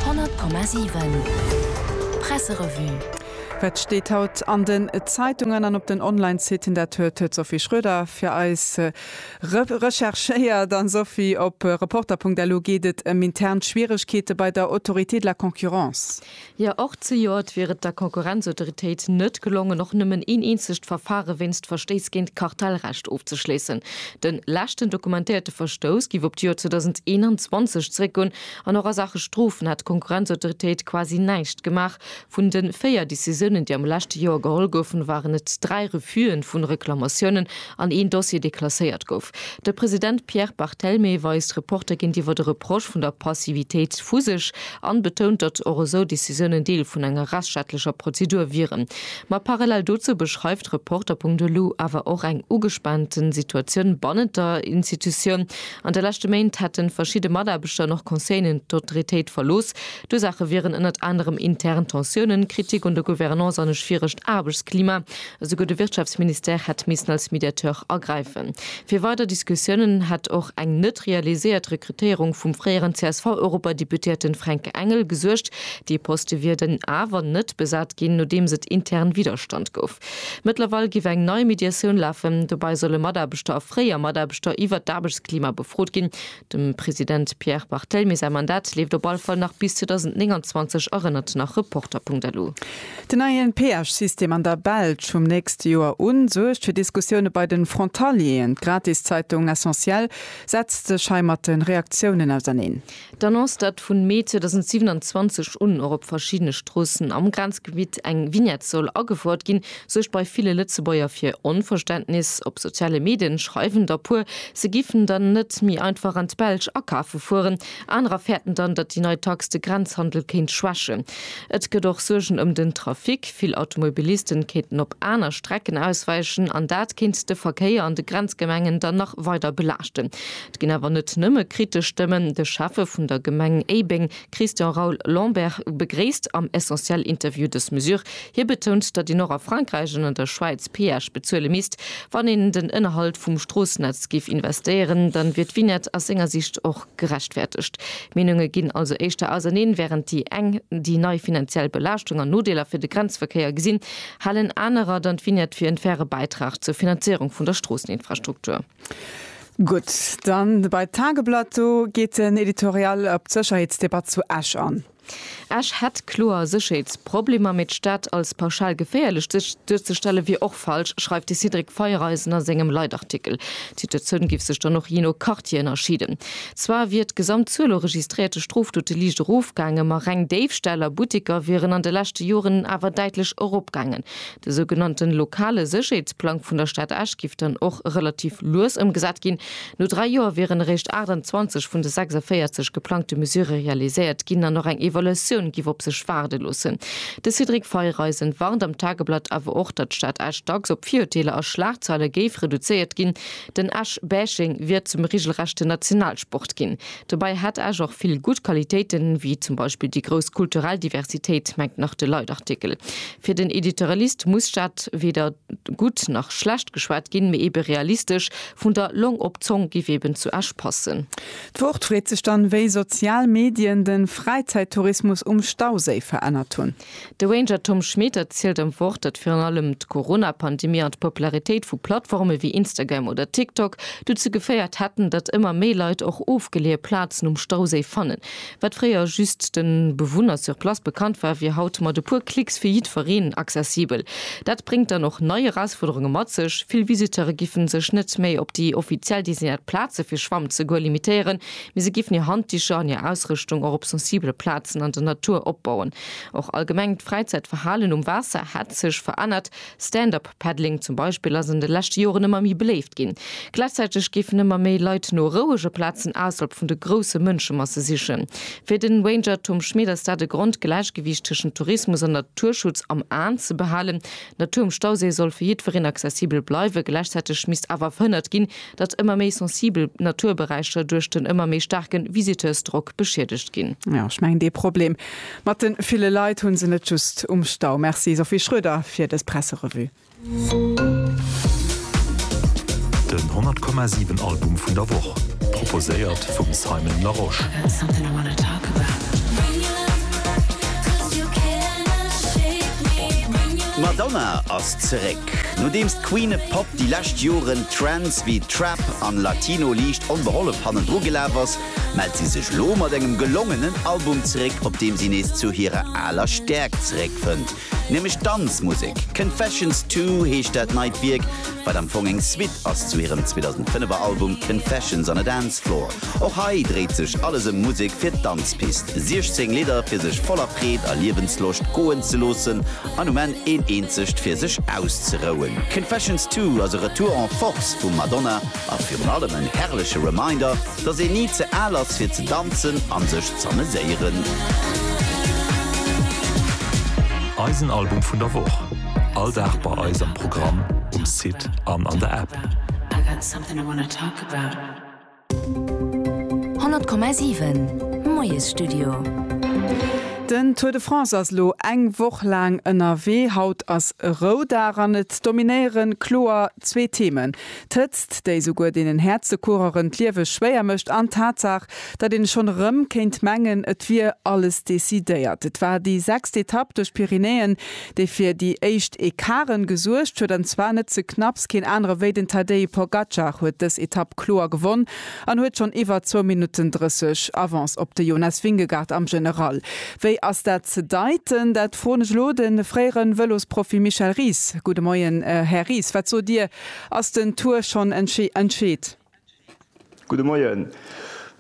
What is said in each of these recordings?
100,7 Presserevue. Wat steet haut an den Zeitungen an op den Online-Siten? Dat huet d'Sophie Schroeder fir eis recherchéiert. An Sophie, op Reporter.lu geet et ëm intern Schwieregkeete bei der Autorité de la Concurrence. Jo, och zejoert wier et der Konkurrenzautoritéit net gelongen, och nëmmen een eenzegt Verfare wéinst Verstéiss géint d'Kartellrecht ofzeschléissen. De leschten dokumentéierte Verstouss giff op d'Joer 2021 zeréckgoen an och a Saache Strofen hätt d'Konkurrenzautoritéit quasi näischt gemaach. Vun de véier Decisiounen, déi am leschte Joer geholl goufen, waren et dräi Refusë vu Reklamatiounen an een Dossier deklasséiert gouf. De President Pierre Barthelmé weist Reporter géintiwwer de Reproche vun der Passivitéit vu sech an betount, datt och esou Decisiounen Deel vun enger rechtsstaatlecher Prozedur wieren. Ma parallel dozou beschreift d'Reporter punkt elo awer och eng ugespaanten Situatioun bannent der Institutioun. An de leschte Méint hätten verschidde Mataarbechter an och Conseilleren d'Autritéit verlooss, D'Ursaache wieren ënnert anerem intern Tensiounen, Kritik un der Gouvernance an e schwieregt Aarbechtsklima. Esouguer de Wirtschaftsministère hätt missen als Mediateur agräifen. Fir weider Diskussiounen hätt och eng net realiséiert Rekrutéierung vum fréieren CSV-Europadeputéierten Fränk Engel gesuergt. Dee Poste wier dann awer net besat ginn, nodeems et intern Widderstand gouf. Mëttlerweil giff eng nei Mediatioun lafen. Dobäi solle Mataarbechter a fréier Mataarbechter iwwert d'Aarbechtsklima befrot ginn, Dem President Pierre Barthelmy säi Mandat leeft op all Fall nach bis 2029, erënnert nach Reporter.lu. Den neien Peage-System an der Belsch vum nächste Joer un suergt fir Diskussioune bei den Frontalieren. D'Gratiszeitung Essentiel setzt sech hei mat den Reaktiounen auserneen. D'Annonce, datt vun Mee 2027 un och op verschiddene Stroossen am Grenzgebitt eng Vignette soll agefouert ginn, suergt bei ville Lëtzebuerger fir Onverständnis. Op soziale Medien schreiwen der puer, se giffen dann net méi einfach an d'Belsch akafe fueren. Anerer fäerten dann, datt déi nei Tax de Grenzhandel kéint schwächen. Et gëtt och Suergen ëm den Trafic. Vill Automobilisten kéinten op aner Strecken ausweichen an dat kéint de Verkéier an de Grenzgemengen dann nach weider belaaschten. Et ginn awer net nëmme kritesch Stëmmen. De Schäffe vun der Gemeng Éibeng Christian Raoul Lambert begréisst am Essentiel Interview dës Mesure. Hie betount, datt een och a Frankräich an an der Schwäiz Peage bezuele misst. Wann een an den Ënnerhalt vum Stroossennetz géif investéieren, dann wier d'Vignette aus senger Sicht och gerechtfäertegt. D'Meenunge ginn also éischter auserneen. Wärend déi eng déi nei finanziell Belaaschtung an Nodeeler fir de Grenzverkéier gesinn, halen anerer dann d'Vignette fir en faire Bäitrag zur Finanzéierung vun der Stroosseninfrastruktur. Gutt, dann bei d'Tageblatt, do geet den Editorial op d'Sécherheetsdebatt zu Esch an. Esch hätt kloer Sécherheetsproblemer, mee d'Stad als pauschal geféierlech duerzestelle wier och falsch, schreift de Cédric Feiereisen a sengem Leitartikel. D'Situatioun giff sech dann och jee no Quartier ënnerscheeden. Zwar wier d'Gesamtzuel u registréierte Strofdote liicht erofgaangen, ma reng Déifställ a Butteker wieren an de leschte Joren awer däitlech eropgaangen, De sougenannten lokale Sécherheetsplang vun der Stad Esch giff dann och relativ lues ëmgesat ginn. No dräi Joer wieren eréischt 28 vun de 46 geplangte Mesurë realiséiert ginn an och eng Evaluatioun giff op sech waarde loossen. De Cédric Feiereisen warnt am Tageblatt awer och, datt d'Stad Esch dacks op Virurteeler a Schlagzeile géif reduzéiert ginn. Den Esch-Bashing wier zum regelrechte Nationalsport ginn. Dobäi hätt Esch och vill gutt Qualitéiten, wéi zum Beispill déi grouss kulturell Diversitéit, mengt nach de Leitartikel. Fir den Editorialist muss d'Stad weder gutt nach schlecht geschwat ginn, mee ebe realistesch, vun der Long op d'Zong giff eben zu Esch passen. D'Wort freet sech dann, wéi sozial Medien de Fräizäittourismus um Stauséi verännert hunn. De Ranger Tom Schmit erzielt am Wort, datt virun allem d'Corona-Pandemie an d'Popularitéit vu Plattforme wéi Instagram oder TikTok dozou geféiert hätten, datt ëmmer méi Leit och ofgeleeë Plazen um Stauséi fannen. Wat fréier just de Bewunner sur place bekannt war, wier haut mat e puer Klicks fir jiddwereen accessibel. Dat bréngt dann och nei Erausfuerderunge mat sech, Vill Visiteure giffen sech net méi op déi offiziell designéiert Plaze fir Schwamm ze goe limitéieren, Mee se géifen hir Handticher an hir Ausrëschtung och op sensibele Plazen an der Natur opbauen. Och allgemengt d'Fräizäitverhalen um Waasser hätt sech verännert. Stand-up-Paddling zum Beispill ass an de leschte Joren ëmmer méi beléift ginn. Gläichzäiteg géifen ëmmer méi Leit no rouege Plazen ausserhalb vun de grousse Mënschemasse sichen. Fir de Ranger Tom Schmit ass dat e Grond, d'Gläichgewiicht tëschent Tourismus an Naturschutz am Aen ze behalen. D'Natur um Stauséi soll fir jiddwereen accessibel bleiwen, gläichzäiteg misst awer verhënnert ginn, datt ëmmer méi sensibel Naturberäicher duerch den ëmmer méi staarke Visiteursdrock beschiedegt ginn. Jo, ech mengen dee Problem mat de ville Leit hu se net just um Stau. Merci Sophie Schroeder fir dës Presserevue. Den 100 Komma 7 Album vun der Woch, proposéiert vum Simon Larosche. D'Madonna ass zeréck! Nodeems d'Queen Pop déi lescht Joren Trends wéi Trap an Latino liicht onbehollef hannendru gelaf ass, mellt si sech lo mat engem gelongenen Album zeréck, op deem si nees zu hirer aler Stäerkt zeréckfënnt, nämlech d'Danzmusek. Confessions Two heescht dat neit Wierk, wat am Fong eng Suite ass zu hirem 2005er Album Confessions on a Dance Floor. Och hei dréit sech alles ëm Musek fir d'Danzpist, 16 Lidder fir sech voller Freed a Liewensloscht goen ze loossen, an um Enn een eenzegt fir sech auszerouen. Confessions Two ass e Retour en Force vum Madonna a virun allem en herrleche Reminder, dass een ni ze al ass fir ze danzen an sech z'ameséieren. Eisen Album vun der Woch, all Dag bei eis am Programm, um Site an an der App. 100,7 Moiesstudio. Den Tour de France ass elo eng Woch laang ënnerwee. Haut ass e Roudag an et dominéiere kloer zwee Themen, d'Hëtzt, déi souguer deenen Häerze-Coureuren d'Liewe schwéier mécht an d'Tatsaach, datt een schonn erëm kéint mengen, et wier alles decidéiert. Et war déi sechst Etapp duerch d'Pyrenäen, dee fir déi éischt Ecarte gesuergt huet, an zwar net ze knapps, keen anere wéi den Tadej Pogacar huet dës Etapp kloer gewonn an huet schonn iwwer zwou Minutten 30 Avance op de Jonas Vingegaard am General. Wéi ass dat ze deiten? Dat froen ech elo de fréiere Vëlosprofi Michel Ries. Gudde Moien, Här Ries, wat sot Dir, ass den Tour schonn entscheet? Gudde Moien.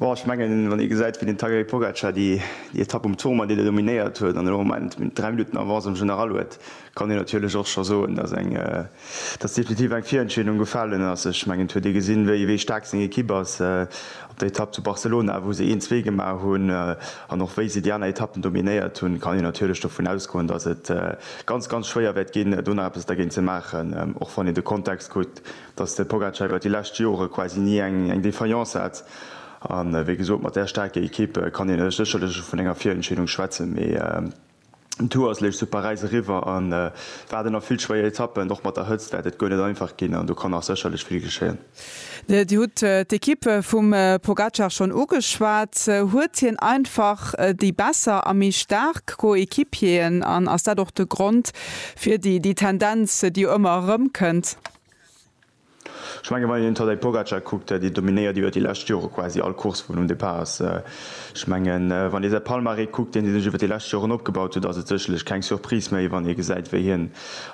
Bon, ech mengen, wann ee gesäit, wéi den Tadej Pogacar déi Etapp um Tourmalet déi do dominéiert huet an elo am Moment 3 Minutten Avance um General huet, kann een natierlech och scho soen, dass eng, dass definitiv eng Virentscheedung gefalen ass. Ech mengen, et huet ee gesinn, wéi, wéi staark seng Ekipp ass op der Etapp zu Barcelona, wou se een, zwee gemaach hunn an och wéi se déi aner Etappen dominéiert hunn, kann een natierlech dovun ausgoen, dass et ganz, ganz schwéier wäert ginn, do nach eppes dergéint ze maachen, och wann een de Kontext kuckt, dass de Pogacar iwwer déi lescht Jore quasi ni eng Defaillance hat. A wéi gesot, mat där staarker Ekipp kann een sécherlech vun enger Virentscheedung schwätzen, mee den Tour ass lech zu Paräis eriwwer a war der nach vill schwéier Etappen. Och mat der Hëtzt wäert et guer net einfach ginn an do kann nach sécherlech vill geschéien. Dir hutt d'Ekipp vum Pogacar schonn ugeschwat. Huet hien einfach déi besser a méi staark Coéquipieren an ass dat och de Grond, Fir déi, déi Tendenz, déi jo ëmmer erëmkënnt. Ech mengen, wann een d'Tadej Pogacar kuckt, déi dominéiert iwwer déi lescht Jore quasi all Course, wou en um Depart ass. Ech mengen, wann ee säi Palmarès kuckt, deen hie sech iwwer déi lescht Joren opgebaut huet, ass et sécherlech keng Surprise méi, wann ee gesäit, wéi hien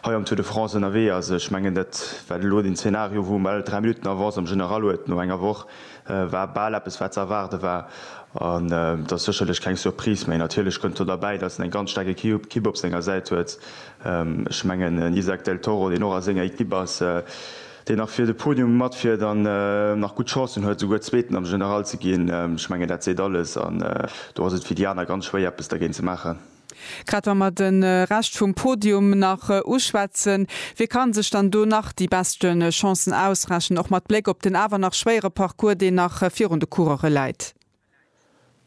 hei am Tour de France ënnerwee ass. Ech mengen, dat war elo den Zeenario, wou en bal dräi Minutten Avance am General huet no enger Woch. War bal eppes wat ze erwaarde war an et ass sécherlech keng Surprise méi. Natierlech kënnt do derbäi, datt en eng ganz staark Equipe op senger Säit huet. Ech mengen en Isaac Del Toro, deen och a senger Equipe ass, deen nach fir de Podium matfiert an nach gutt Chancen huet esouguer Zweeten am General ze ginn, ech mengen dat seet alles an do ass et fir déi aner ganz schwéier eppes dergéint ze maachen. Grad wa mer de Rescht vum Podium nach uschwätzen, wie ka sech dann do nach déi beschte Chancen ausrechnen, och mat Bléck op den awer nach schwéiere Parcours, deen nach virun de Coureuren läit?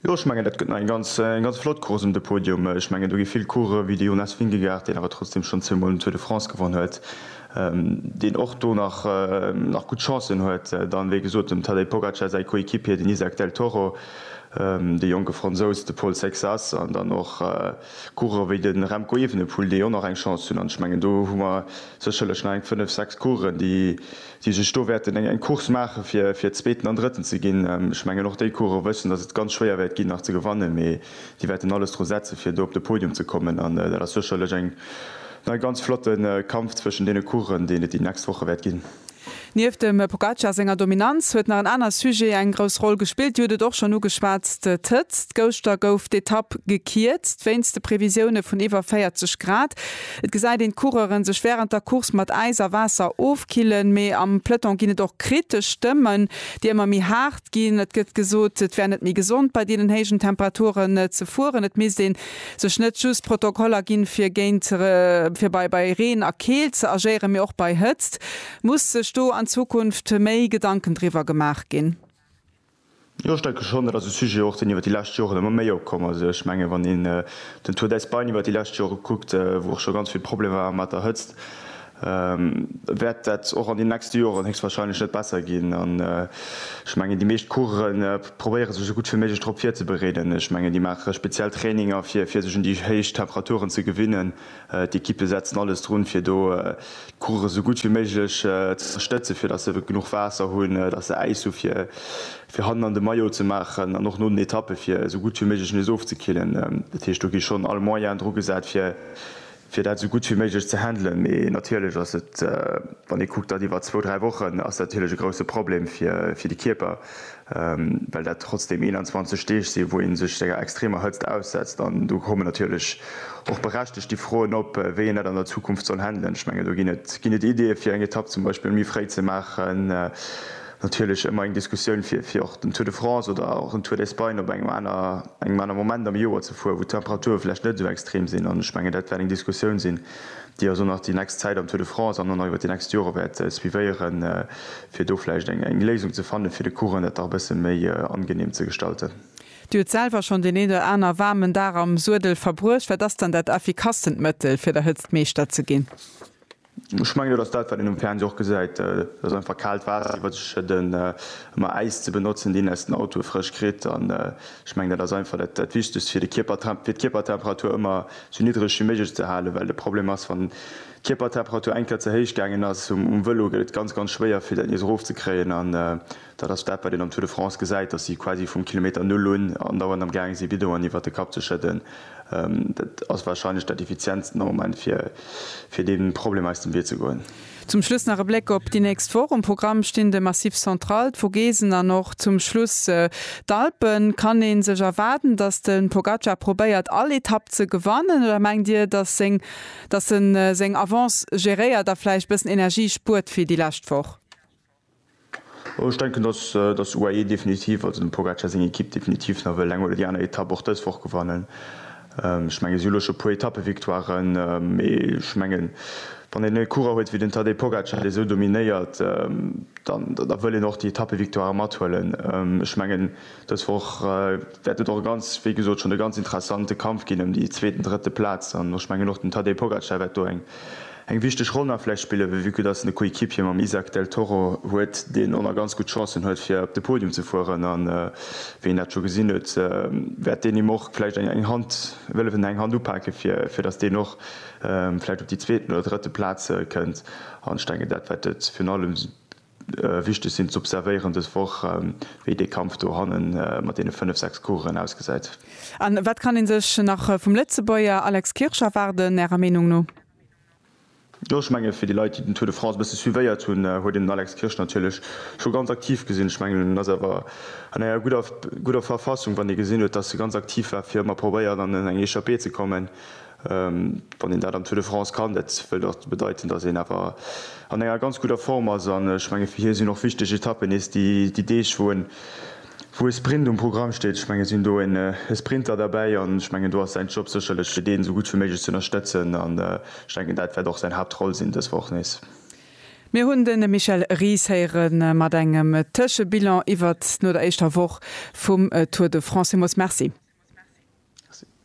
Jo, ech mengen, dat gëtt nach eng ganz flott Course ëm de Podium. Ech mengen, do gi vill Coureure wéi de Jonas Vingegaard, deen awer trotzdeem schonn zweemol den Tour de France gewonnen huet, deen och do nach nach gutt Chancen huet, dann wéi gesot dem Tadej Pogacar säi Coéquipier den Izack del Toro, de jonke Fransous de Paul Sexas an dann och Coureurer wéi de Remco Evenepoel déi och nach eng Chance hunn an ech mengen do hu mer sécherlech nach eng 5, 6 Coureuren déi déi sech do wäerten eng eng Course maache fir fir Zweeten an Drëtten ze ginn. Ech mengen och déi Coureuren wëssen datt et ganz schwéier wäert ginn nach ze gewannen, mee déi wäerten alles dru setze fir do op de Podium ze kommen an dat ass sécherlech eng E ganz flotte Kampf zwëschen deene Coureuren, deen et déi nächst Woche wäert ginn. Nieft dem Pogacar senger Dominanz huet nach en anert Sujet eng grouss Roll gespillt. Dir hutt et och schonn ugeschwat, d'Hëtzt. Gëschter gouf d'Etapp gekierzt wéinst de Previsioune vun iwwer 40 Grad. Et gesäit een d'Coureuren sech wärend der Course mat Äis a Waasser ofkillen. Mee am Peloton ginn et och kritesch Stëmmen, déi ëmmer méi haart ginn. Et gëtt gesot, et wär net méi gesond bei deenen héijen Temperaturen ze fueren. Et misst een sech net just Protokoller ginn, fir géint, fir bei, bei Reen a Keelt ze agéieren, mee och bei Hëtzt. Muss sech do an Zukunft méi Gedanken driwwer gemaach ginn? Jo, ech denke schonn. Dat ass e Sujet och, deen iwwert déi lescht Joren ëmmer méi opkomm ass. Ech mengen, wann een den Tour d'Espagne iwwert déi lescht Jore kuckt, wou och scho ganz vill Problemer war mat der Hëtzt, wäert dat och an den nächste Joren héchstwahrscheinlech net besser ginn. An ech mengen, déi meescht Course probéiere sech esou gutt wéi méiglech drop virzebereeden. Ech mengen, déi maache speziell Traininger, fir sech un déi héich Temperaturen ze gewinnen. D'Ekippe setzen alles drun, fir do d'Course esou gutt wéi méiglech ze stëtzen, fir datt se genuch Waasser hunn, datt se Äis hu fir hannen an de Maillot ze maachen an och no den Etappe fir esou gutt wéi méiglech nees ofzekillen. Dat heescht, do gi schonn all Moyen dru gesat, fir fir dat esou gutt wéi méiglech ze handelen, mee natierlech ass et, wann ee kuckt, dat iwwer zwou, dräi Wochen, ass dat natierlech e grousse Problem fir de Kierper, well dat trotzdeem 21 Deeg sinn, wou ee sech senger extremer Hëtzt aussetzt. An do kommen natierlech och berechtegt déi Froen op, wéi een dat an der Zukunft soll handelen. Ech mengen, do ginn et Ideeë fir eng Etapp zum Beispill méi fréi ze maachen, Natierlech ëmmer eng Diskussioun fir fir och den Tour de France oder och en Tour d'Espagne op engem aner engem aner Moment am Joer ze fueren, wou d'Temperature vläicht net esou extrem sinn. An ech mengen dat wäert eng Diskussioun sinn, déi eis och nach déi nächst Zäit am Tour de France an och nach iwwert déi nächst Jore wäert suivéieren, fir do vläicht eng eng Léisung ze fannen, fir de Coureuren dat dach e bësse méi angenehm ze gestalten. Dir hutt selwer schonn deen een oder aner waarmen Dag am Suedel verbruecht. Wat ass dann dat effikastent Mëttel, fir der Hëtzt Meeschter ze ginn? Ech mengen, dat ass dat, wat een um Fernseh och gesäit. Et ass einfach kaalt Waasser iwwer sech schëdden, ëmmer Äis ze benotzen, deen aus den Autoe frësch kritt. An ech mengen, dat ass einfach dat Wichtegst, fir d'Kierpertemperatur ëmmer sou niddreg wéi méiglech ze halen. Well de Problem ass, wann d'Kierpertemperatur eng Kéier ze héich gaangen ass um Vëlo, gëtt et ganz, ganz schwéier, fir dat nees erofzekréien. Dat ass dat, wat een am Tour de France gesäit, datt si quasi vum Kilometer Null un andauernd am gaange si Bidonen iwwert de Kapp ze schëdden. Dat ass warscheinlech dat Effizientsten am Moment, fir deem Problem aus dem Wee ze goen. Zum Schluss nach e Bléck op déi nächst Woch. Um Programm stinn de Massif Central, d'Vogesen an och zum Schluss d'Alpen. Kann ee sech erwaarden, datt de Pogacar probéiert, all Etapp ze gewannen oder mengt Dir, datt e seng Avance geréiert a vläicht e bëssen Energie spuert fir déi lescht Woch? Ech denken, datt d'UAE definitiv, also dem Pogacar seng Ekipp, definitiv nach wëll eng oder déi aner Etapp och dës Woch gewannen. Ech mengen, si hu lo scho e puer Etappevictoiren, mee ech mengen, wann een e Coureur huet wéi den Tadej Pogacar, dee esou dominéiert, da wëll een och déi Etappevictoire mathuelen. Ech mengen, dës Woch wäert et och e ganz, wéi gesot schonn, e ganz interessante Kampf ginn ëm déi zweet an drëtte Plaz. An ech mengen, och den Tadej Pogacar wäert do eng Eng wichteg Roll nach vläicht spille wéi vu que dass en e Coéquipier mam Isaac Del Toro huet, deen och nach ganz gutt Chancen huet fir op de Podium ze fueren. A wéi een dat scho gesinn huet, wäert deen him och vläicht eng Hand wëllefen, eng Hand upake fir dass deen och vläicht op déi zweeten oder drëtte Plaz kënnt. An ech denken dat wat et virun allem Wichteg sinn z'observéieren dës Woch, wéi dee Kampf do hanne mat deene fënnef, sechs Coureuren ausgesäit. A wat kann ee sech nach vum Lëtzebuerger Alex Kirsch erwaarden, Ärer Meenung no? Jo, ech menge fir déi Leit, déi den Tour de France e bësse suivéiert hunn, huet een den Alex Kirsch natierlech scho ganz aktiv gesinn. Ech mengen, en ass awer an enger gudder Verfassung, wann ee gesinn huet, datt e ganz aktiv war, fir ëmmer probéiert an eng Echappée ze kommen. Wann een dat am Tour de France kann, dat wëllt och bedeiten, datt een awer an enger ganz gudder Form ass. An ech menge fir hie sinn och wichteg Etappen nees déi Deeg, wou en, wou e Sprint um Programm steet. Ech menge sinn do en Sprinter derbäi an ech mengen do ass säin Job sécherlech fir deen esou gutt wéi méiglech ze ënnerstëtzen. An ech denken dat wäert och säin Haaptroll sinn dës Woch nees. Mir hunn de Michel Ries héiere mat engem Tëschebilan iwwert no der éischter Woch vum Tour de France. Villmools Merci.